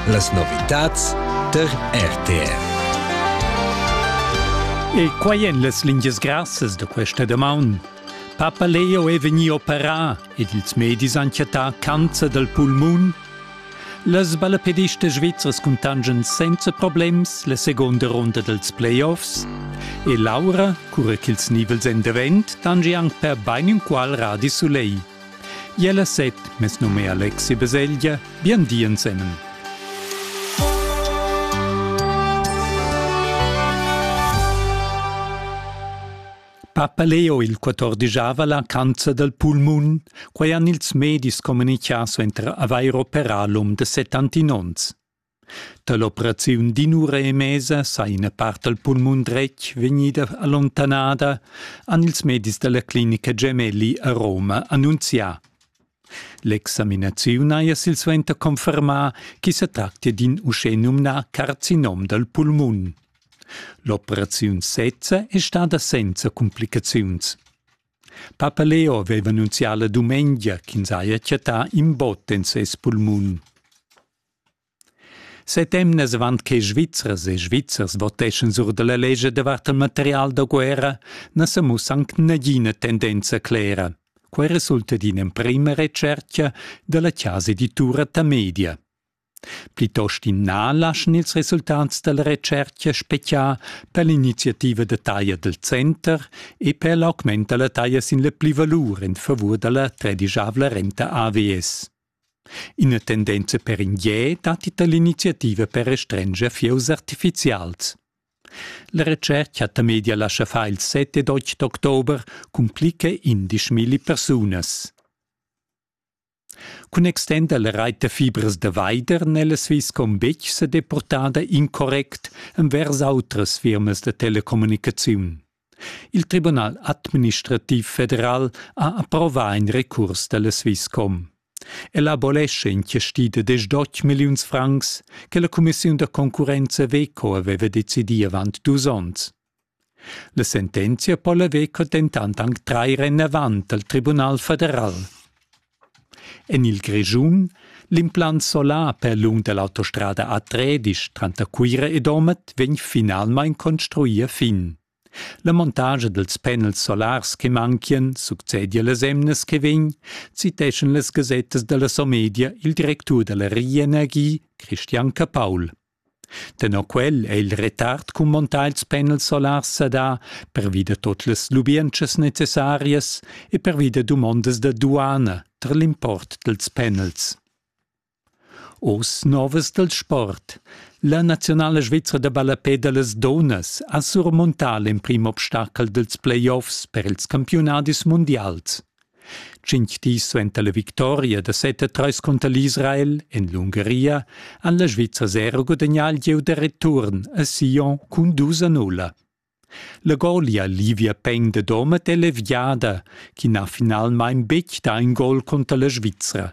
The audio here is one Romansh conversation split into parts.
Las novitads tar RTR. E quai en las lingias grassas da questa damaun. Papa Leo è vegnì operà ed ils medis han chattà cancer dal pulmun. Las ballapedistas svizzers cuntangian senza problems la seconda runda dals playoffs e Laura, cura ch'ils nivels èn davent, tangi anc per bain inqual radi sulegl. Jella set, mes num è Alexi Beseglia, bien di ensemen. Papa Leo il 14 la cancer del pulmun, quai han ils medis communicato enter Avair operalum de 70 onns. Dall'operaziun d'in'ura e mesa sa ina part dal pulmun dretg vegnida allontanada, han ils medis dalla clinica Gemelli a Roma annunzià. L'examinaziun haja silsuenter confermà ch'i sa tractia d'in uschenumnà carcinom dal pulmun. L'operaziun sezza è stada senza cumplicaziuns. Papa Leo aveva annunzià la dumengia ch'ins haja chattà in bot en ses pulmun. Set emnas avant che Svizzers e Svizzers voteschan sur da la lescha davart il material da guerra na sa mussa anc nagina tendenza clera. Quai resulta d'in'emprima retschertga da la chasa editura Tamedia. Plitost in na laschan ils resultats da la retschertga speziar per l'iniziativa da taglia dal center e per l'augment da la taglia sin la plivalur en favur da la tredigiavla renta AVS. Ina tendenza per in gie datti da l'iniziativa per restrenscher fieus artifizials. La retschertga da media lascha far il 7 ed 8 d'october cun plicca indisch milli persunas. Cun extender la reit da fibras da veider n'è la Swisscom betg sa depurtada incorrect envers autras firmas da telecommunicaziun. Il Tribunal administrativ federal ha approvà in recurs da la Swisscom. El abolescha in chasti da deschdotg milliuns francs che la cumissiun da concurrenza Veco aveva decidì avant dus onns. La sentenzia po la Veco dentant anc trair enavant al Tribunal federal. En il Grischun l'implant solar per lung da l'autostrada A3 tranter Cuira e Domat vegn finalmain construì a fin. La montagia dals panels solars che manchian succedia las emnas che vegn, citeschan las gasettas da la Somedia il directur da la Rienergie, Christian Capaul. Tenor quel è il retard cumantà ils panels solars sadà pervi da tut las lubientschas necessarias e pervi da dumondas da duana tar l'import dals panels. Oz novas dal sport. La naziunala svizra da ballapè da las dunnas ha surmontà l'emprim obstachel dals playoffs per ils campiunadis mundials. Tschintg dis suenter la victoria da set a treis cunter l'Israel en l'Ungaria han la Svizra zero gudagnà il gieu da return a Sion cun dus a nulla. La golia Livia Peng da Domat è leviada, ch'ina finalmain betg dà in gol cunter la Svizra.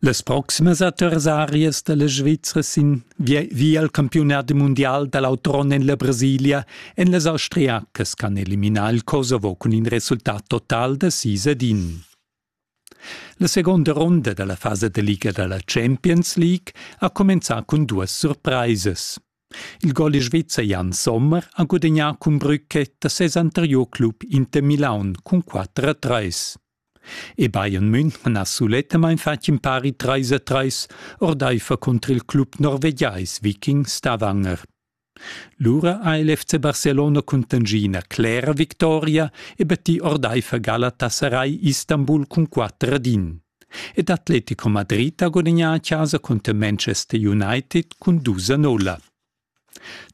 Las proximas adversarias dalla Svizra sin via al campiunat mundial dall'autron en la Brasilia en las austriacas can eliminar il Kosovo cun in resultat total da sis ad in. La seconda ronda dalla fasa de liga dalla Champions League ha comenzà cun duas surpraisas. Il gol svizzer Jan Sommer ha gudagnà cun Brücke da ses anterior club Inter Milaun cun 4 a 3. E Bayern München ha sulettamain fatg in pari trais a trais ordaifer cunter il club norvegiais viking Stavanger. Lura ha il FC Barcelona cuntanschì ina clera victoria e battì ordaifer Galatasaray Istanbul cun quatter ad in. Ed Atletico Madrid ha gudagnà a chasa cunter Manchester United cun dus a nolla.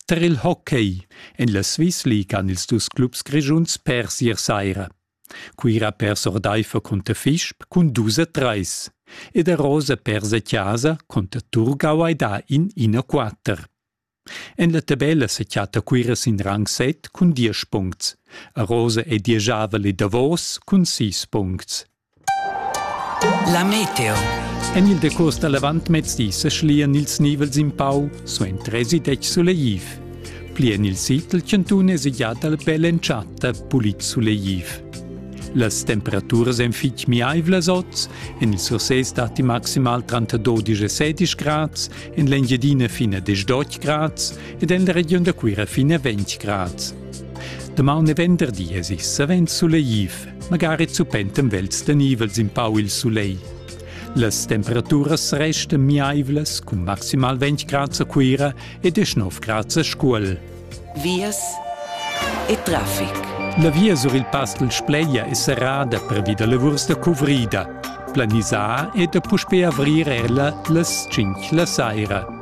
Tar il hockey en la Swiss League han ils dus clubs grischuns pers ier saira. Cuira ha pers ordaifer cunter Fisch cun dus a trais ed a Rosa pers a chasa cunter Turgau hai dà in 1-4. En la tabella sa chatta Cuira sin rang 7 cun diesch puncts. A Rosa è dieschavel e davos cun sis puncts. La meteo. En il decurs da l'avantmezdi sa schlian ils nivels in pau suenter èsi detg sulegliv. Pli en il sid dal chantun è già dal bel entschatta pulit sulegliv. Las temperaturas èn fitg miaivlas oz, en il Sursés datti maximal tranter 12 e 16 grads, en l'Engiadina fina 18 grads ed en la regiun da Cuira fina 20 grads. Damaun e venderdi è sis savens sulegliv. magari zupentem vels tenivels in pau il sulegl. Las temperaturas restan miaivlas cun maximal 20 grad a Cuira e 19 grad a Scuol. Vias e traffic. La via sur il Pastel Spleia è serrada pervi da lavurs da cuvrida. Planisar è da puspè avrir ella las 5 la saira.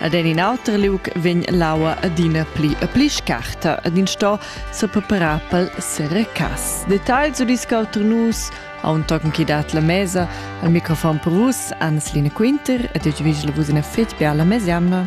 Ad en in auter liug vegn l'aua adina pli e pli scarta ed ins sto sepreparar pel serecas. Details u discuter nus aun tochen chi dat la mesa. Al microfon per vus Anneslina Quinter ed io vegl vus in effet per la mesa jamna.